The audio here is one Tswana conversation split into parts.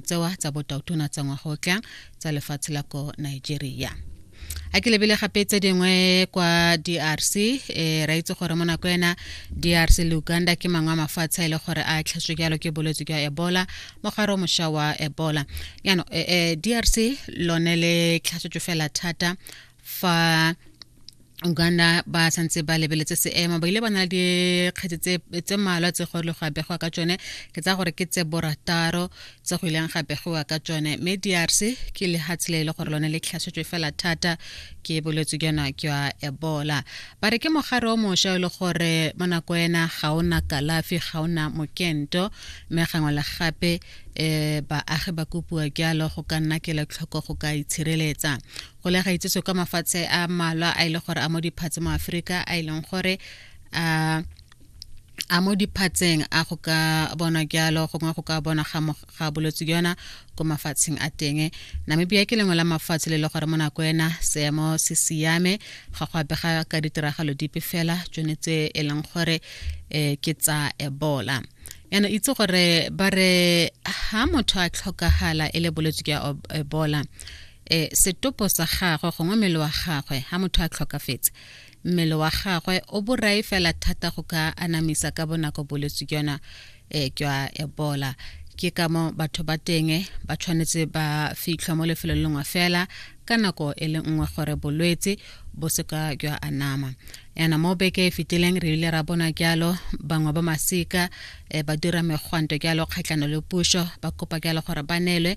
tsewa tsa botautona tsa ngwaga o tlang tsa lefatshe la ko nigeria a ke lebile gape tse dingwe kwa drc e eh, ra itse gore mo nako ena drc le uganda ke mangwe a mafatshe a e le gore a tlhaswe jalo ke bolwetse jwa ebola mogare o mošwa wa ebola yaanong eh, eh, drc lone le tlhasetso fela thata fa uganda ba santse ba lebeletse seemo ba ile ba na le dikgetse tse malwa tse go le go abegiwa ka tsone ke tsa gore ke tse borataro tse go ileng ga begiwa ka tsone mme drc ke lehatshe le e le gore lone le tlhasetswe fela thata ke bolwetse jona jwa ebola ba re ke mogare o mošwa e le gore mo nako ena ga o na kalafi ga o na mokento mme gangwe le gape um baagi ba kopiwa jalo go ka nna kela tlhoko go ka itshireletsa go le gaitsese kwa mafatshe a malwa a ile e gore a mo diphatse mo aforika a e leng gore a a mo diphatseng a go ka bona jalo gongwe go ka bona ga bolwetse jona ko mafatsheng a teng namibia ke lengwe la mafatshe le le gore mo nako ena seemo se siame ga go abega ka ditiragalo dipe fela tsone tse e leng gore um ke tsa ebola yana itse gore ba re ha motho a tlhokagala e le bolwetse jwa ebola e setopo sa gagwe gongwe mmele wa gagwe ha motho a tlhokafetse mmele wa gagwe o borai fela thata go ka anamisa ka bonako bolwetse ke yona e jwa ebola ke ka mo batho ba teng ba tshwanetse ba fitlhwa mo lefelo le lengwe fela ka nako e le nngwe gore bolwetse bo seka jwa anama yana mo beke e fetileng re ile ra bona jalo bangwe ba masika eh, ba dira megwanto jalo kgatlhano le puso ba kopa jalo gore ba neelwe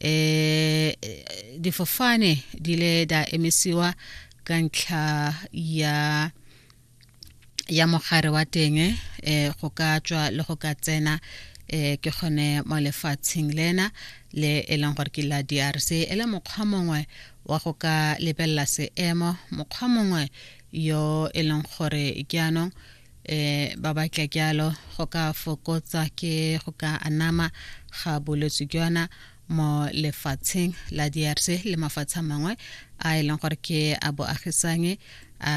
eh difofane di le da emisiwa ka ntlha ya ya mogare wa teng eh go ka tswa le go ka tsena eh ke gone mo lefatsheng lena le e leng gore ke la drc e le mokgwa mongwe wa go ka lebelela seemo mokgwa mongwe yo e leng gore jaanong eh ba batla kyalo go ka fokotsa ke go ka anama ga bolwetse jona mo lefatsheng la DRC le mafatshe mangwe a e leng gore ke a boagisanye a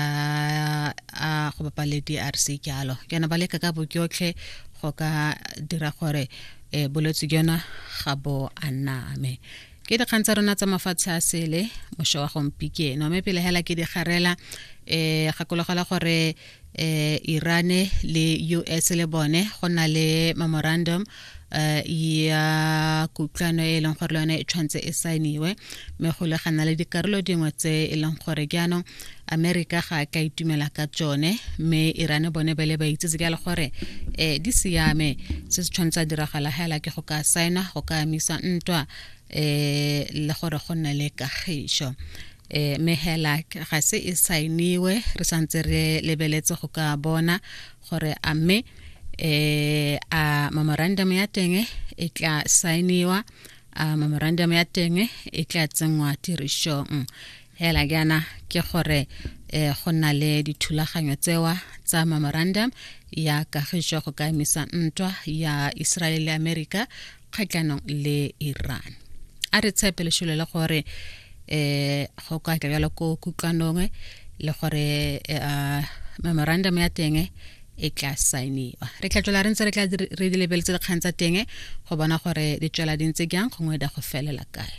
a go bapa le DRC kyalo jana ba leka ka bokyotlhe go ka dira gore eh, bolwetse jona ga bo aname ke dikgang tsa rona tsa mafatshe a sele mošo wa gompikeno mme pele hela ke digarela um eh, gakologela gore eh Irane le US le bone go na le memorandum eh ya kutlwano e leng gore le yone e tshwanetse e saeniwe mme go le gana le dikarolo dingwe tse e leng gore jaanong america ga ka itumela ka tsone mme irane bone ba le ba itsetse ka le gore eh di siame se se tshwanetse a diragala hela ke go ka saena go ka amisa ntwa eh le gore go nne le kagišo e mehelak ga se e sainiwe re santse re lebeletse go ka bona gore a mme um a memorandum ya teng e tla sainiwa a memorandum ya teng e tla tsenngwa tirisong hela jaana ke gore um go na le dithulaganyo tsewa tsa memorandum ya kagišo go ka emisa ntwa ya israel le america kgatlhanong le iran a re tshepe lešole le gore um go ka tla bjalo ko kutlwanong le gore um memorandum ya teng e tla saeniwa re tla tswela re ntse re tla re di lebeletse dikgang tsa teng go bona gore di tswela di ntse jang gongwe da go felela kae